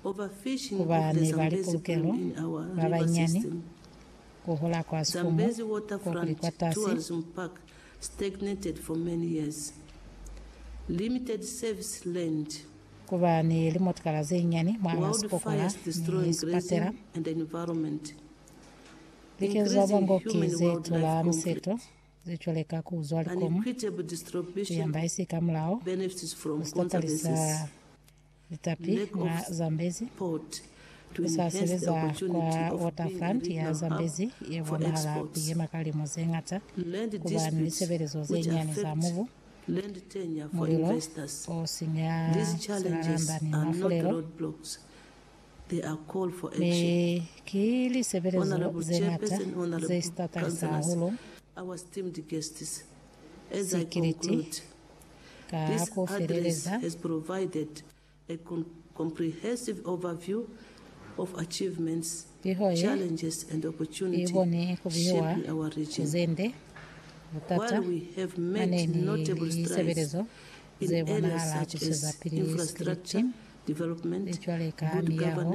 ku ba ni ba lipulukelo ba banyinyani, ku hola kwa sikumu ko kuli kwatasi, ku ba ni limotikala ze nyinyani mwahal'a sikokola ni sipatela, likezo za ngoki ze tula miseto ze cwale ka ku zwa likomu ku yamba isi ka mulao, ku sitapalisa Litapi mwa Zambezi, Ku sa sebeza kwa Waterfront ya Zambezi ye bonahala ku yema ka limu ze ñata ku ba ni lisebelezo ze nyani za mubu, mulilo o sinya silalanda ni mafulelo, mi ki lisebelezo ze ñata ze si tatalisa hahulu sikiliti Ka ku feleleza, piho ye i koni ku bihiwa ku ze nde, butata, maneini, ni lisebelezo ze bonahala ku sezapili sikripiti, li cwale ka miyaho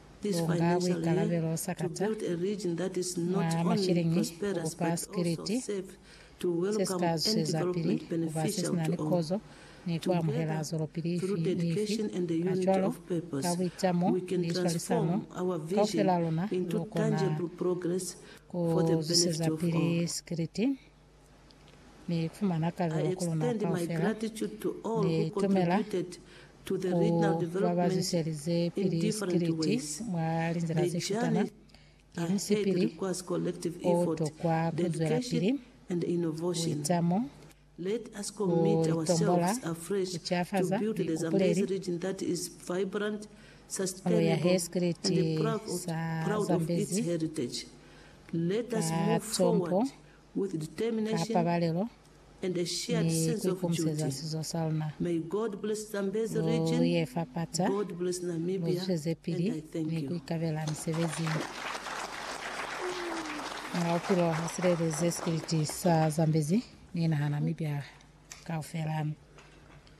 Bunga buikalabelo sakata mwa masheleñi kukupa sikiliti sesika zwisezapili kuba sesina ni kozo ni kuamuhela zwelopili ifi ni ifi. Kacwalo, ka buitamo ni swalisano, kaufelaluna lukona kuzwisezapili sikiliti. Ni fumana kalulo ku luna kaufela. Ni tumela ku ba ba zwiselize pili sikiliti mwa linzila ze shutana. Ki musipili o tokwa ku zwela pili ku ita mo, ku itombola, ku cafaza mipupuleli, mulo ya he sikiliti sa zambezi ka tlompo ka pabalelo ni ku ikomiseza sizo sa luna lu ye fapata lu zwezepili ni ku ikabela misebezi mwa bupilo ha silelezi spiliti sa Zambezi ni naha Namibia kaufela.